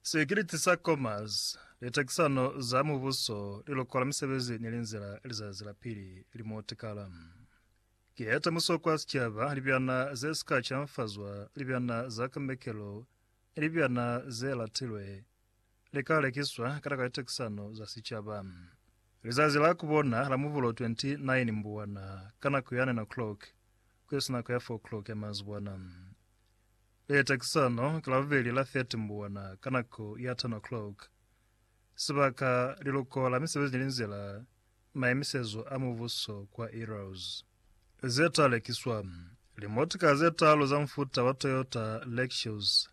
Sikiliti sa Commerce, Litakisano za Mubuso li lokola misebezi ni linzila lizazi la pili li mo tikala. Ki ya temuso kwa sicaba, libyana ze si ka canfazwa, libyana za kamekelo ni libyana ze latilwe li ka lekiswa ka taka litekisano za sicaba. Lizazi la ku bona la Mubulo 29 Mbuwana ka nako ya 9 o'clock ku isi nako ya 4 o'clock ya manzibwana. Litekisano ki Labubeli la 30 Mbuwana ka nako ya 10 o'clock. Sibaka, Liluko la Misebezi ni Linzila, Maimisezo a Mubuso kwa Eros. Ze ta lekiswa, Limotika ze talu za mufuta wa Toyota Lexus